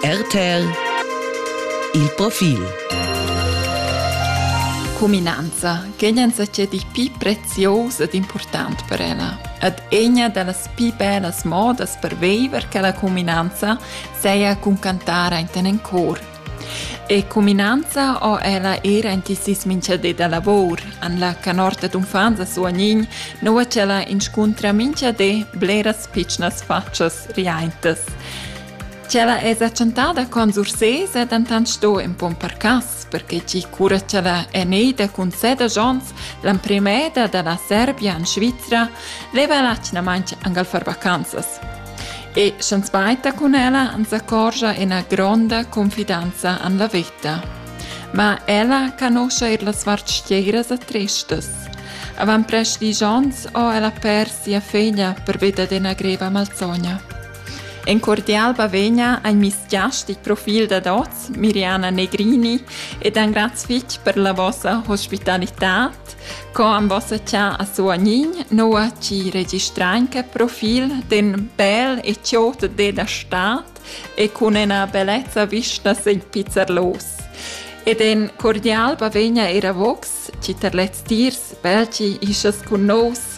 RTL Il profil Cuminanza che gnanca c'è di più preziosa ed importante per ella. Ed egna dallas più bellas modas per viver che la cuminanza seia cun cantare in ten cor E cuminanza ho ella eir aint il sis minchadi da lavur. En la canorta d'uffants a Suognin nouva ch'ella inscuntra minchadi bleras pitschnas fatschas riaintas. Ch'ella esa chantada con Sursés è dentant sto in pon per cas, perché chi cura ch'ella è neida cun seda Jons, l'emprimeda da la Serbia in Svizra, leva l'atgnamaint angal far vacanzas. E sch'ans bainta cun ella ans accorgia üna gronda confidanza an la vita. Ma ella canuscha eir las vartschieras e tristas. Avant prest disch ons ho ella pers sia figlia pervia d'üna greva malsogna. In cordial bavegna al miss giastic profil dad hoz Miriana Negrini ed ein graz fitg per la vossa hospitalitad. Co am vossa cha a suanign, noa ci registrein che profil den bel e ciot de da stat e cun ena bellezza vista sen pizzer los. Ed en cordial bavegna era vox, ci terlez tirs, belci isas cun nos,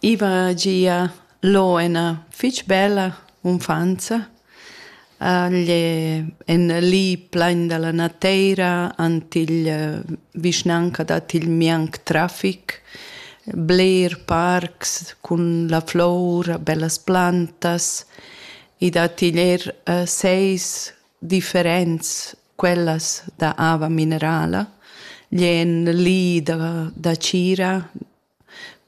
I va gia lo ena fich bella unfanza. Igl è en li plain da la nateira ant igl vischnanca dat igl mianc trafic, bler parcs cun la flour, bellas plantas. I dat igl er seis differents quellas da ava minerala. Igl è en li da, da tgira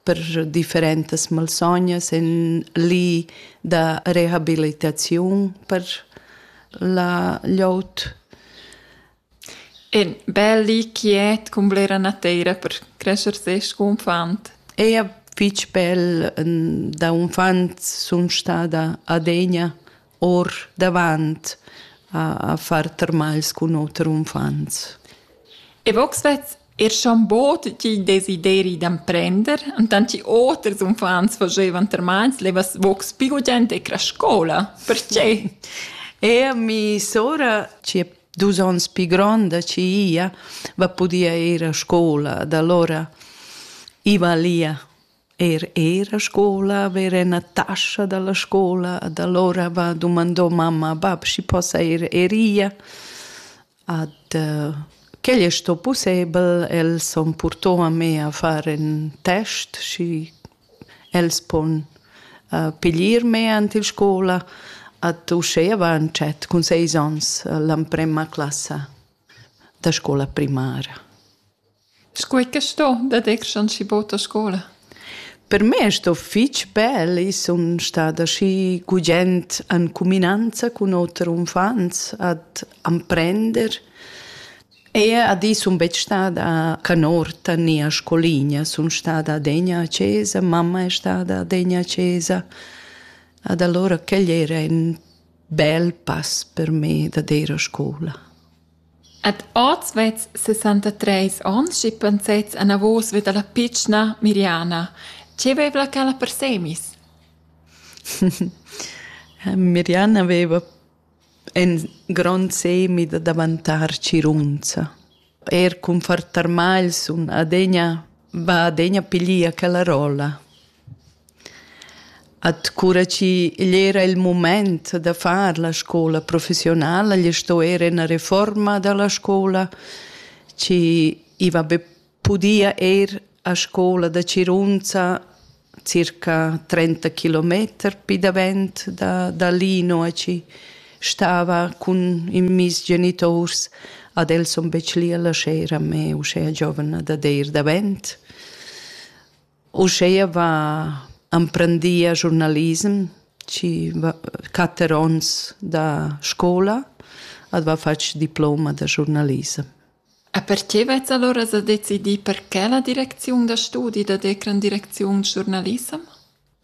per differentas malsognas en li da rehabilitaziun per la glieud. E bel li quiet cun blera nateira per crescer ses confant. E a fitg bel da unfant sun stada adegna or davant a, a far termals cun oter uffants. E vox vez er schon bot ti desideri d'emprender, und dann ti oters uffants facevan termals levas vox più gente e scola. Perché? E mi sora, ci è dus ons più gronda, ci ia, va podia ir a scuola, da allora iva lia Er era scola haver ena tascha dalla scola ad allora va dumandò mamma bab schi possa ir eria. Ad uh, quel è sto pussebel, els han purtò a me a far en test, schi els pon uh, piglier me ant il scola. Ad uschea va an chat cun seis ons l'amprema classa da scola primara. Scuai che sto daditg aschi bot a scola? Per me è sto fitg bel. I sun stada aschi gugent en cuminanza cun oter unfants ad amprender. Ea ad i sun betg stada a canorta ni a scoligna. Sun stada adegna a chesa, mamma è stada adegna a chesa. Ad allora quel era in bel pass per me da ir a scola. Ed oz vezs sessantatreis onns schi pensets anavos vi dalla pitschna Miriana. Che vevla quella per semis? Miriana veva in grond semi da daventar tschirunza. Er cun far tarmagl sun adegna, va adegna piglier quella rolla. At cura chi igl era il mumaint da far la scoula professiunala, gli sto eir üna refuorma da la scoula chi i va be pudia ir a scoula da Cirunza circa trenta kilometer pi davent da da lì, nua chi stava cun in miss genituors. Ad els sun betg lì a lascher a me uschè giovna dad eir davent. Uscheia va emprendia giurnalism chi va quatter ons da scoula ed va fatg diploma da giurnalism. A perche vets allora sa decidir perché la direcziun da studi da decran direcziun giurnalissem?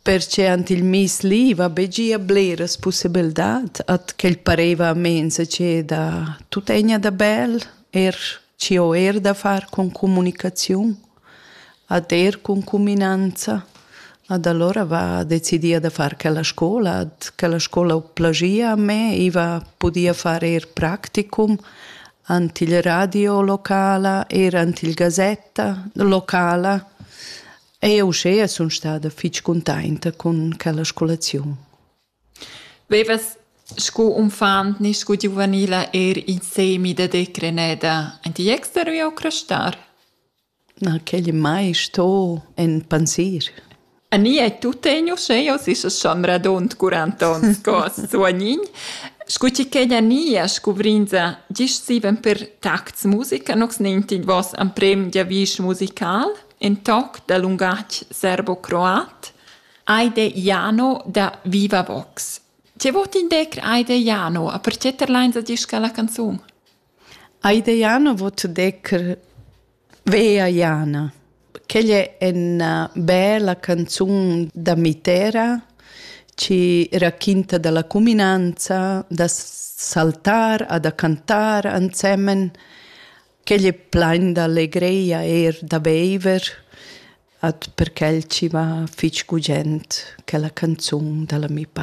Perche ant il mis li va be gia bleras possibildat at quel pareva a mensa che da tutegna da bel er ci ho er da far con comunicaziun Ad er cun cuminanza. Ad alura va decidia da far quella scola. Ad quella scola ho plagia a me, i va pudia far eir practicum ant il radio locala, eir ant il gazetta locala. E uschea sun stada fich cuntainta cun quella scolaziun. Vevas scu unfant ni scu giuvenila eir insemi da decrener da indi jester u jau crustar? Na, quel ei mai sto en pensir. A ni ei tut teniu sche jau sis a chombra d'ont curanta ons co as suagnin. Scu chi ch'ei da nia scuvrinza gist siven per tacts musica nox nentin vos amprem giavisch musical, in toc da lungatg serbocroat. Aide Jano da Viva Vox. Tge vot indecr Aide Jano a pertge terlains a disca la canzun? Aide Jano vot decr Vea Jana. Quella è una bella canzun da mitera ci racchinta dalla cuminanza da saltar a da cantar ansemen. Quella è plain d'allegria er da beiver. At per quel chi va fich gugent quella canzun da l'ami pa.